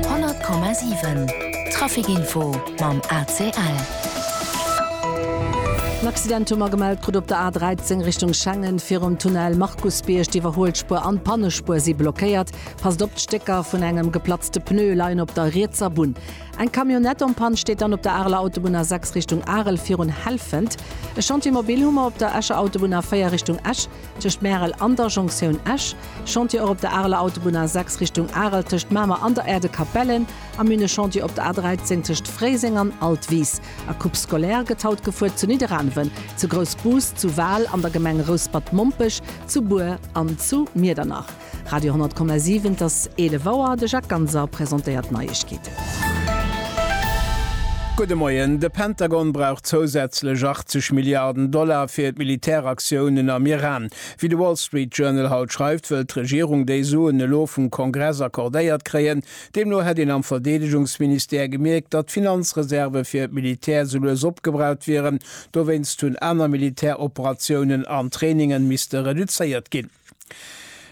100,7 Trafic-Info mam ACL. En Accident hu mer gemellt krut op der A 13 Richtung Schengen. Virum Tunnel Markusbierg, d'Iwwerhuelspuer an d'Pannespuer si blockéiert. Passt op, d'Stécker vun engem geplatzte Pneu leien op der rietser Bunn. Eng Camionnette en Panne steet dann op der Areler Autobunn A 6 Richtung Arel virun Helfent. E Chantier mobil hu mer op der Escher Autobunn A 4 Richtung Esch. Tëscht Märel an der Jonktioun Esch, Chantier och op der Areler Autobunn A 6 Richtung Arel tëscht Mamer an der Aire de Capellen a mir hunn e Chantier op der A 13 tëscht Fréiseng an Altwis. A Coupe scolaire gëtt haut gefuert zu Nidderaanwen, zu Groussbus, zu Wal, an der Gemeng Rouspert-Mompech, zu Bur an zu Miedernach. Radio 10,7 Et ass 11 Auer, de Jacques Ganser presentéiert d'Neiegkeeten. Gudde Moien, De Pentagon brauch zousätzlech 80 Milliarden Dollar fir d'Militäraktiounen am Iran. Wéi de Wall Street Journal haut schreift, wëll d'Regierung déi Suen elo vum Kongress accordéiert kréien. Deemno hätt een am Verdeedegungsministère gemierkt, datt d'Finanzreserve fir d'Militär sou lues opgebraucht wieren. Dowéinst hunn aner Militäroperatiounen an Trainingen misste reduzéiert ginn.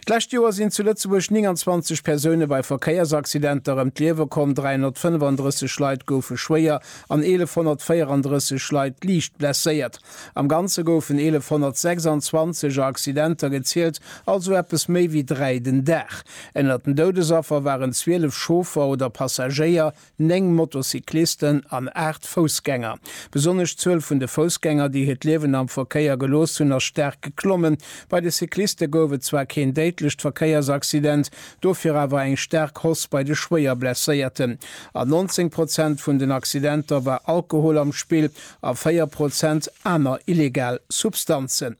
D'lescht Joer sinn zu Lëtzebuerg 29 Persoune bei Verkéiersaccidenter ëm d'Liewe komm, 335 Leit goufe schwéier an 1.134 Leit liicht blesséiert. Am Ganze goufen 1.126 a Accidenter gezielt, also eppes méi wéi dräi den Dag. Ënnert den Doudesaffer waren 12 Chauffer oder Passagéier, Néng Motocyclisten an aacht Foussgänger. Besonnesch d'Zuel vun de Foussgänger, déi hiert Liewen am Verkéier gelooss hunn, ass staark geklommen. Bei de Cycliste gouf et zwar keen déidlecht Verkéiersaccident, dofir awer eng staark Hausse bei de Schwéierblesséierten. An 19 Prozent vun den Accidenter war Alkohol am Spill a 4 Prozent aner illegal Substanzen.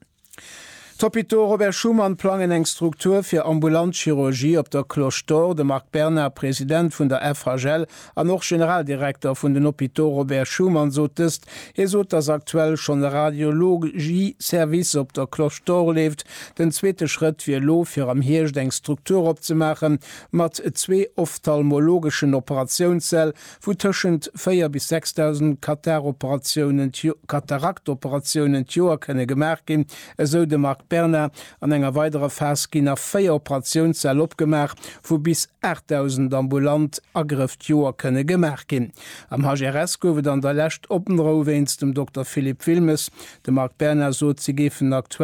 D'Hôpitaux Robert Schuman plangen eng Struktur fir ambulant Chirurgie op der Cloche d'Or. De Marc Bernard, President vun der FHL an och Generaldirekter vun den Hôpitaux Robert Schuman sot dëst. Hie sot, datt aktuell schonn e Radiologie-Service op der Cloche d'Or leeft. Den zweete Schrëtt wier elo fir am Hierscht eng Struktur opzemaache mat zwee ophtalmologeschen Operatiounssäll, wou tëschent 4 bis 6.000 Kataroperatiounen, Kataraktoperatiounen, d'Joer kënne gemaach ginn, esou de Marc Berna. An enger weiderer Phas ginn nach véier Operatiounssäll opgemaach, wou bis 8.000 ambulant Agrëff d'Joer kënne gemaach ginn. Am HRS gouf et an der Lescht Opnrou wéinst dem Dokter Philippe Wilmes. De Marc Berna sot, si géifen aktuell